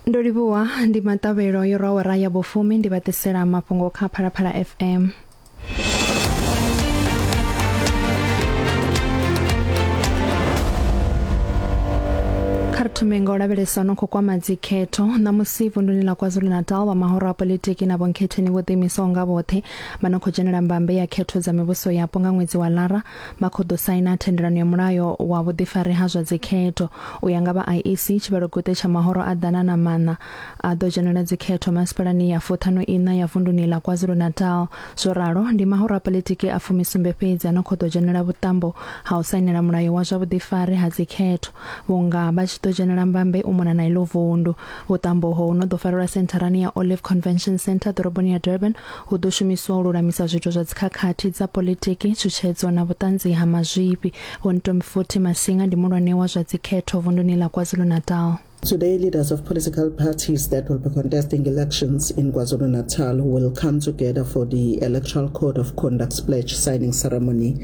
ndo livhuwa ndi maṱavhelo yo rwa awara ya vhufumi ndi vha ḓisela mafhungo kha phalaphala fm thome nga u lavhelesa no khou kwama dzikhetho ṋamusi vunduni ḽa kwazulu-natal vha mahoro a politiki na vhonkhetheni vho ḓiimisaho nga vhoṱhe vha no khou dzhenela mbambe ya khetho dza mivhuso yapo nga ṅwedzi wa lara vha khou ḓo saina thendelano ya mulayo wa vhuḓifari ha zwa dzikhetho. U ya nga vha IEC, tshivhalo-guṱe tsha mahoro a ḓana na maṋa a ḓo dzhenela dzikhetho masipalani ya fuṱhanu iṋa ya vunduni ḽa KwaZulu-Natal. Zwo ralo, ndi mahoro a politiki a fumisumbe fhedzi a no khou ḓo dzhenela vhuṱambo ha u sainela mulayo wa zwa vhuḓifari ha dzikhetho. vhunga vha tshi ḓo dzhenela mbambe u mona na iḽo vundu. Vhuṱambo ho no ḓo farelwa sentharani ya Olive Convention Centre ḓoroboni ya Durban hu ḓo shumiswa u lulamisa zwiito zwa dzikhakhathi dza politiki, tshutshedzo na vhuṱanzi ha mazwifhi. Vho Ntombifuthi Masinga ndi mulwane wa zwa dzikhetho vunduni ḽa KwaZulu-Natal. Today, leaders of political parties that will be contesting elections in KwaZulu-Natal will come together for the Electoral Code of Conduct's pledge signing ceremony.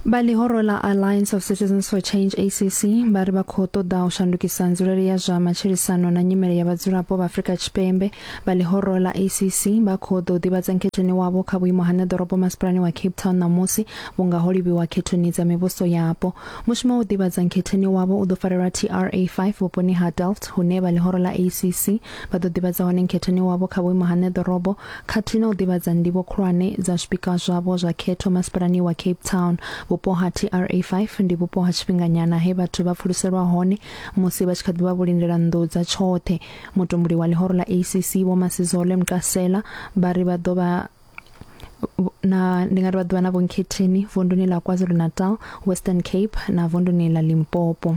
vha ḽihoro ḽa alliance of citizens for change acc vha ri vha khou ṱoḓa u shandukisa nzulele ya zwa matshilisano na nyimele ya vhadzulapo vha afrika tshipembe vha ḽihoro ḽa acc vha khou ḓo ḓivhadza nkhetheni wavho kha vhuimo ha ṋeḓorobo masipalani wa cape town ṋamusi vhunga ho livhiwa khethoni dza mivhuso yapo mushumo wa u ḓivhadza nkhetheni wavho u ḓo farelwa tra 5 vhuponi ha delft hune vha ḽihoro ḽa acc Vha ḓo ḓivhadza hone Nkhethoni wavho kha vhuimo ha ṋne ḓorobo khathihi na u ḓivhadza ndivho khulwane dza zwipikwa zwavho zwa khetho masipalani wa Cape Town. Vhupo ha TRA five ndi vhupo ha tshifhinganyana he vhathu vha pfuluselwa hone musi vha tshi kha ḓi vha vhulindela nnḓu dza tshoṱhe. Mutumbuli wa ḽihoro ḽa ACC Vho Masizole Mqasela vha ri vha ḓo vha na ndi nga ri vha ḓuvha na vho Nkhetheni vunduni ḽa KwaZulu-Natal, Western Cape na vunduni ḽa Limpopo.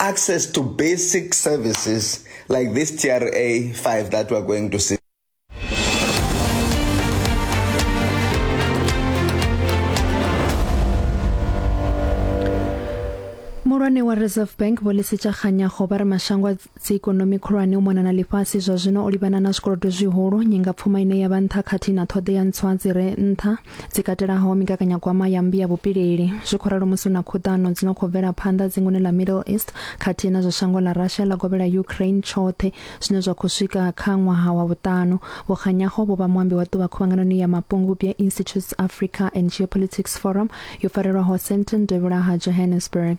access to basic services like this TRA 5 that we're going to see. muhulwane wa reserve bank vho lisitsha kganyago ba re mashango a dziikonomi khulwane u mona na ḽifhasi zwa zwino o livhana na zwikolodo zwihulu nyingapfuma ine ya vha nṱha khathihi na ṱhoḓea ntswa dzi re nṱha dzi katelaho migaganyagwama ya mmbi ya vhupileli zwi khou ralo musi hu na khuḓano dzi no khou bvela phanḓa dzingoni ḽa middle east khathihi na zwa shango ḽa russia ḽa govhela ukraine tshoṱhe zwine zwa khou swika kha ṅwaha wa vhuṱanu vhukganyaho vho vha muambi wa ṱuvha khuvhanganoni ya mapungubwi ya institutes africa and geopolitics forum yo farelwaho senton devhula ha johannesburg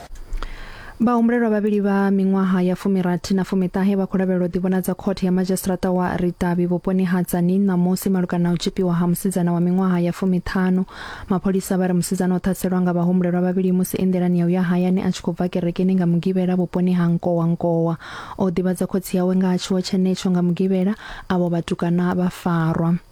Vhahumbulelwa vhavhili vha miṅwaha ya fumirathi na fumiṱahe vha khou lavhelelwa u ḓivhonadza khothe ya madzhisiṱiraṱa wa Ritavhi vhuponi ha Tzaneen ṋamusi malugana na u tzhipiwa ha musidzana wa miṅwaha ya fumiṱhanu. Mapholisa vha ri musidzana o ṱhaselwa nga vhahumbulelwa vhavhili musi e nḓilani ya u ya hayani a tshi khou bva kerekeni nga Mugivhela vhuponi ha Nkowa Nkowa. O ḓivhadza khotsi yawe nga ha tshiwo tshenetsho nga Mugivhela, avho vhatukana vha farwa.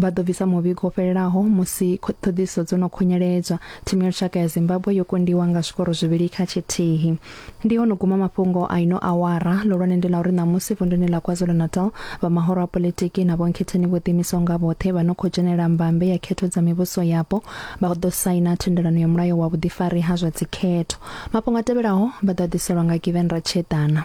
Vha ḓo bvisa muvhigo wo fhelelaho musi ṱhoḓisiso dzo no khunyeledzwa. Thimu ya lushaka ya Zimbabwe yo kundiwa nga zwikoro zwivhili kha tshithihi. Ndi ho no guma mafhungo a ino awara. Ḽihulwane ndi ḽa uri ṋamusi vunḓuni ḽa KwaZulu-Natal, vha mahoro a politiki na vhonkhetheni vho ḓiimisaho nga vhoṱhe vha no khou dzhenela mbambe ya khetho dza mivhuso yapo vha ḓo saina thendelano ya mulayo wa vhuḓifari ha zwa dzikhetho. Mafhungo a tevhelaho vha ḓo a ḓiselwa nga Given Ratshiedana.